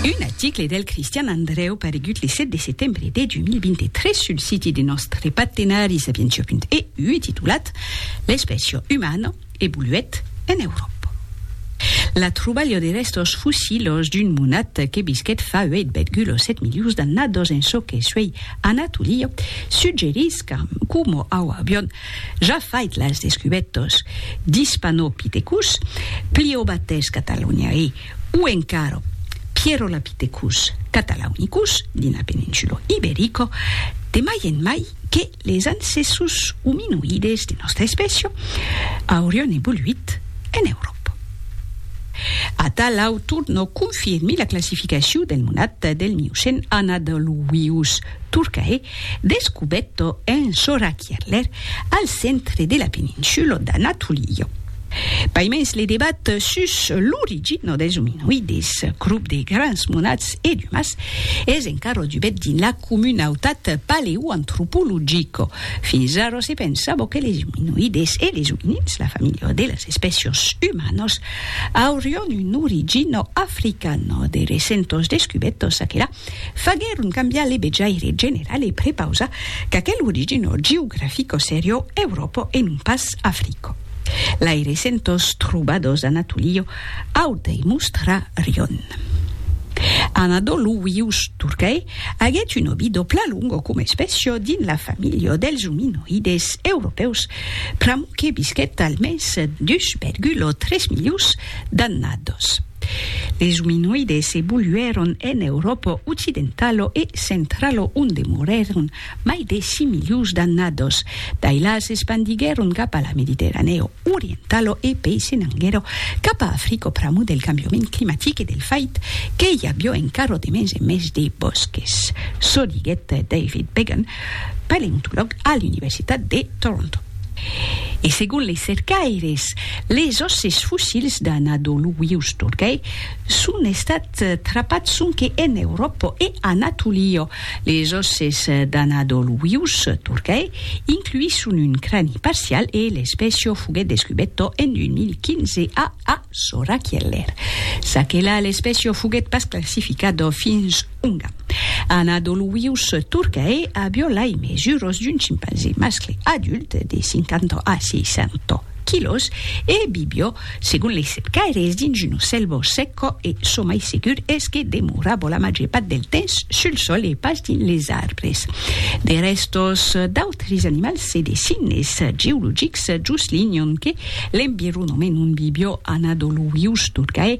Un article del Cristian Andreu paregut le 7 de setembre de 2023 sul siti de nòstre partenari sapientia.eu e titulat L'espècia umana evoluèt en Euròpa. La trobalha de rèstos fossilhos d'un monat que visquèt fa 8,7 milions d'annadas en çò que suèi Anatolia suggerís qu'amb qu'Homo auavion Ja fait las descubetos dis Panopithecus, Pliobates cataloniae, o encara Pierolapithecus catalaunicus dins la peninsulo iberico, de mai en mai que les ancessus ominoïdes de nòstra espècia aurion evoluit en Euròpa. Atà l'autor no confirmi la classificaciu del monat del Miocèn Anadoluius turcae, Descubetto en Sora Kierler al centre de la peninsulo d'Anatolio. Paimens le debat sus l'origina dels ominoides, crop de grans monats e d'umas, es encara dubet dins la comunautat paleoantropologica. Fins ara se pensava que les ominoides e les ominins, la familha de las espècias umanas, aurián una origina africana. De recentas descubetas aquela faguèron cambiar le vejaire general e prepausar qu'aquel origino geografico serió Euròpo e non pas Africo. Lai recentós trobadors d'Anatolio auta e mostra rion. Anadolu vius Turcae aguèt un obido plan longo coma espècio dins la familha dels ominoides europèus pr'amor que visquèt almens 2,3 milions d'annados. Les ominoides evoluèron en Euròpa occidentalo e centralo onde morèron mai de 6 milions d'annados. Dai la s'espandiguèron cap a la Mediterranèo orientalo e pei se n'anguèro cap a Africo pr'amor del cambiament climatic e del fait que i avió encarro de mens en mens de bòsques, çò diguèt David Began, paleontològ a l'Universitat de Toronto. E segon les cercaires, les òsses fossils d'Anadoluius Turcae son estats trapats sonque en Euròpa e Anatolia. Les òsses d'Anadoluius Turcae incluisson un crani parcial e l'espècia foguèt descubèta en 2015 a Asorakieler. Ça que la, l'espècia foguèt pas classificada fins Unga ana dol wius turcae a violar i mesuros d'un chimpanzé mascle adult de 50 a 600 quilos e vivio, segon lei cercaires, dins un ocèl vos secco e çò mai segur es que demoravo la màger part del temps sul sol e pas dins les arbres. De rèstos d'autres animals e de signes geologics juslinhon que l'environament ont vivio ana dol wius turcae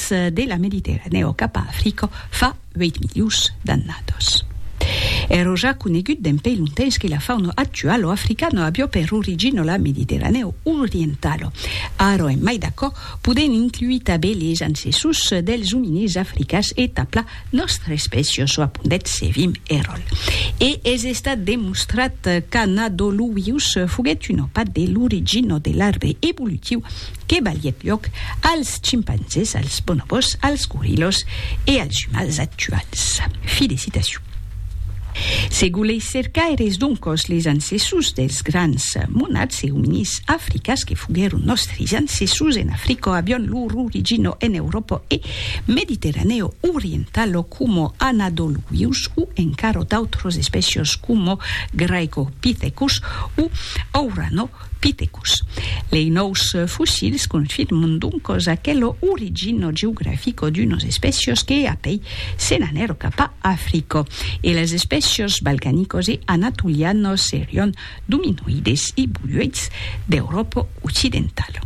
Las de la Mediterranèa o cap a Africa fa 8 milions d'annadas. Èro ja conegut d'en pei lontens que la fauna actuala africana avió per origina la Mediterranèa orientala. Ara en mai d'aquò, podèm incluir tanben les ancessors dels ominís africans e taplar Nòstre espècia çò apondèt Sevim Erol, e es estat demostrat qu'Anadoluius foguèt un òpat de l'origin ò de l'arbre evolutiu que balhèt lhòc als chimpanzés, als bonobòs, als gorilhos e als umans actuals. Fi de citacion. Se goleis cercar er esdonc-òs les ancessus dels grans monats e ominis africas que foguèron nòstris ancessus en Africò avion lor origin ò en Euròpò e, Mediterranèo oriental o coma anadoluius o encara d'autras espècias coma Graecopithecus o Auranopithecus. Lei nòus fossils confirman doncas aquela origina geografica d'unas espècias que apèi se n'anèron cap a Africa e las espècias balcanicas e anatolianas serián d'ominoides e boluèits d'Euròpa occidentala.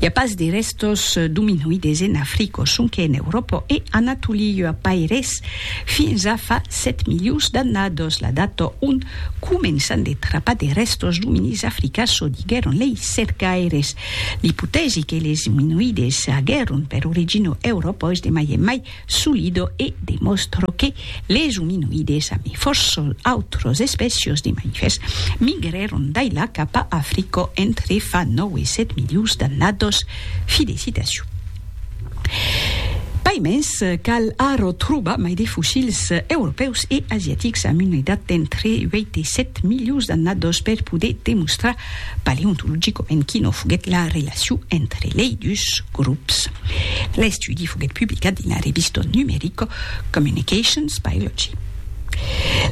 I a pas de rèstos d'ominoides en Africa, sonque en Euròpa e Anatolia, a Paires, fins a fa 7 milions d'annadas, la data ont començan de trapar de rèstos d'ominís africans, çò diguèron lei cercaires. L'ipotèsi que les ominoides aguèron per origina Euròpa es de mai en mai Solido e demòstro que les ominoides a mi fòssol autros espècios de mamifèrs migrèron dai la cap a Africo entre fa nòu e sèt milions d'annados. Fi de citacion. Pas mens, cal arro trobar mai de fossils europèus e asiatics amb una edat d'entre ueit e sèt milions d'annados per poder demostrar paleontologicament quina foguèt la relacion entre lei dus grops. L'estudi foguèt publicat dins la revista numerica Communications Biology.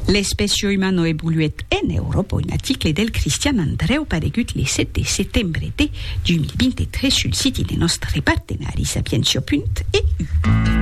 L'espècia umana evoluèt en Euròpa, un article del Cristian Andrèu paregut le 7 de setembre de 2023 sul siti de nòstre partenari Sapientia. E. U.